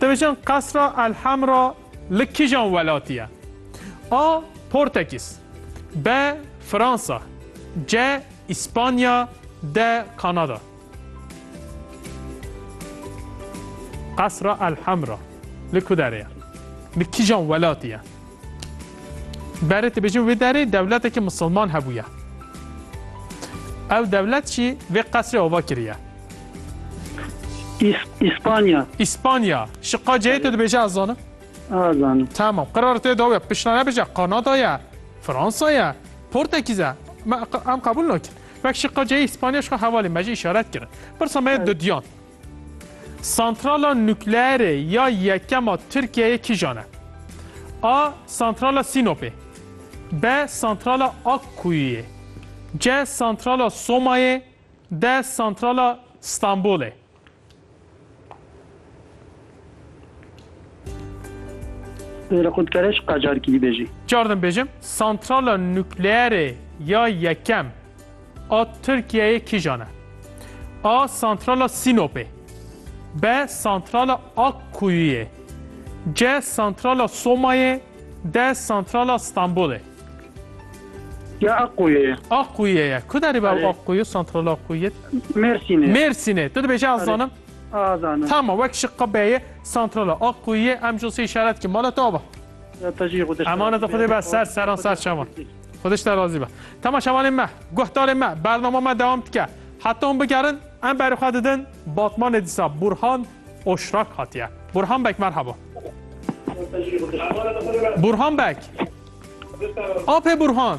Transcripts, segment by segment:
Dibêjin Qesra El Hemra li kîjan welatî ye? A. Portekîz B. Fransa C. Îspanya D. Kanada Qesra El Hemra li ku derê ye? Li kîjan welatî ye? Berê tu bêjin wê derê dewletekî misilman hebûye. Ew dewlet jî vê qesrê ava kiriye. İspanya. İspanya. Şi qaceyê tu dibêje ez zanim? Ez zanim. Tamam. Qirara tê dawe. Pişna nebêje Kanadaya, Fransaya, Portekîze. Em qebul nakin. Vek şi qaceyê İspanya şi hevalê me jî işaret kirin. Pirsa me dudiyan. Santrala nukleerê ya yekem a Tirkiyeyê kîjan e? A. Santrala Sînopê B. Santrala Akkuyuyê C. Santrala Somayê D. Santrala Stenbolê Pêra xwe dikare ji qacarkî bibêjî. Carî din bêjim, santrala nukleerê ya yekem a Tirkiyeyê kîjan e? A. Santrala Sînopê B. Santrala Akkuyuyê C. Santrala Somayê D. Santrala Stenbolê Ya Akkuyê ye. Akkuyê ye. Ku derê be Akkuyê, santrala Akkuyê? Mêrsînê. Mêrsînê. Tu dibêje ez zanim? Tama wek şi qibeyê santrala Akkuyiyê em ji sê şeret ki mala te ava. Emaneta xwedê be ser seran ser şevan. Xwedê ji te razî be. Tama şevanê me, guhdarê me, bernama me dewam dike. Heta hûn bigerin em berê xwe didin Batmanê dîsa Burhan Oşrak hatiye. Burhan Beg merhaba. Burhan Beg. Apê Burhan.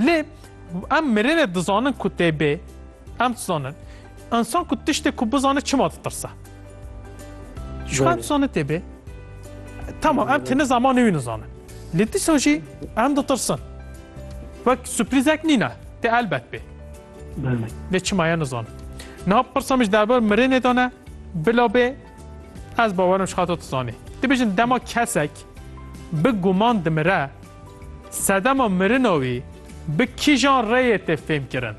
Lê em mirinê dizanin ku tê bê. Em dizanin. Însan ku tiştê ku bizane çima ditirse. Çima em dizanin tê bê. Tamam em têne zamanê wî nizanin. Lê dîsa jî em ditirsin. Wek sürprizek nîne. Tê elbet bê. Lê çima ya nizanin. Niha pirsa min ji derbarê mirinê de ne bila bê Ez bawerim ji xato tu zanî. Dibêjin dema kesek bi guman dimire, sedema mirina wî bi kîjan rêyê tê fêmkirin?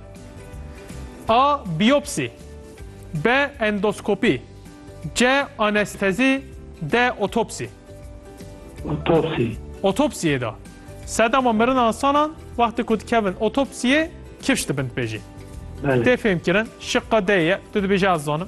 A. Biyopsî B. Endoskopî C. Anestezî D. Otopsî Otopsî. Otopsiyê de sedema mirina insanan wextê ku dikevin otopsiyê kifş dibin dibêjî. Belê. Tê fêmkirin. Şiqa D ye. Tu dibêjî ez zanim.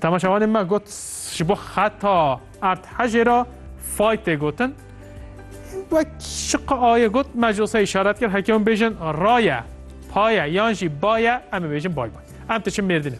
Temaşevanê me got ji bo xeta erd hejê re fay tê gotin. Wek şiqa ayê got me ji wisa îşaret kir heke hûn bêjin raye, paye yan jî baye em ê bêjin bay bay. Em tiçin mêrdinê.